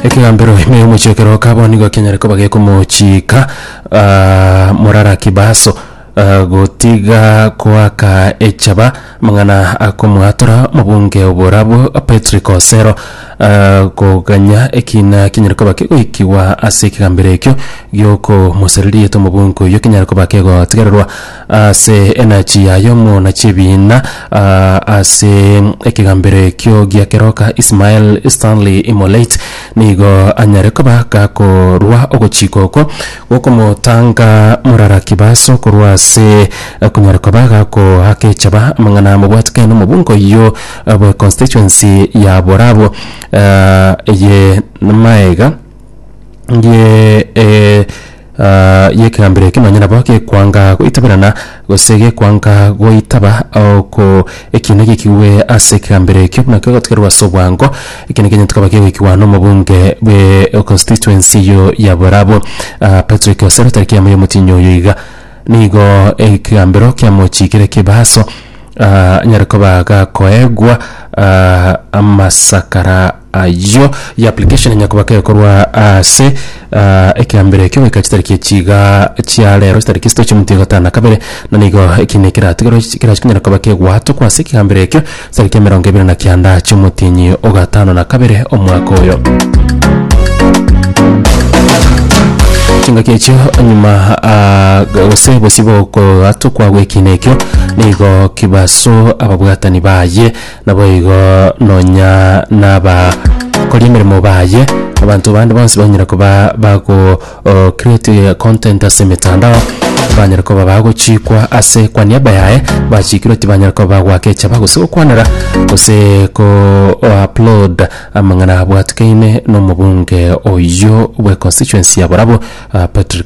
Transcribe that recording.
ekegambero ime y'omochekero okaba nigo ekenyare koba gekomochika ah, morara kibaso ah, gotiga koaka echaba amang'ana akomwatora omobunge oborabo Patrick Osero ah, koganya ekina kinyare koba kegoikigwa ase ekegambero ekio giokomosereria rieta omobunge oyio kinyare koba kegotigererwa Ase enachi yaye omonachi ebiina ase ekegambero ekio gia keroka Ismael Stanley Imoleit nigo anyare koba gakorua ogochika oko gokomotanga Murara Kibaso korwa ase konyara koba gakoakechaba amang'ana amobwatekane nomobunga oyio bwe constituency ya Borabwo eye maega ye eh, ah, yekegambero eke nonye nabo gekwanga goitaberana gose gekwanga goitaba oko ekiina gekigwe ase ekegambero ekio buna kegotigerwa ase obwango eke neke gento kaba kegoikigwa nomobunge bwe constituency eyo ya borabo ah, patrick osero tariki yamo yomotienyi oyo iga nigo ekegambero kiamochikire kibaso ah, nyare koba gakoegwa ah, amasakara ayio ya application enya koba kekorwa ase ah, ekeambero ekio goika chitariki echi iga chia rero chitariki esito chiamonto ya gatano na kabere na nigo eki ne keratigoro kerachi konyara koba kegwatokwa ase ekeambero ekio tariki emerongo ebere na kianda chiomotienyi o gatano na kabere omwaka oyo chingaki echio nyuma ah, gose bosibo kogatokwa gwekina ekio nigo kibaso ababwatani baye Naboigo nonya n'abakori emeremo baye, abanto bande bonsi banyare koba bago o, create content ase emetandao, banyare koba bagochikwa ase kwa niaba yaye, bachikirwe tibanyare koba bagoaka echaba gose gokwanera gose ko o upload amang'ana abwatukeine nomobunge oyio bwe constituency ya Borabu, ah, Patrick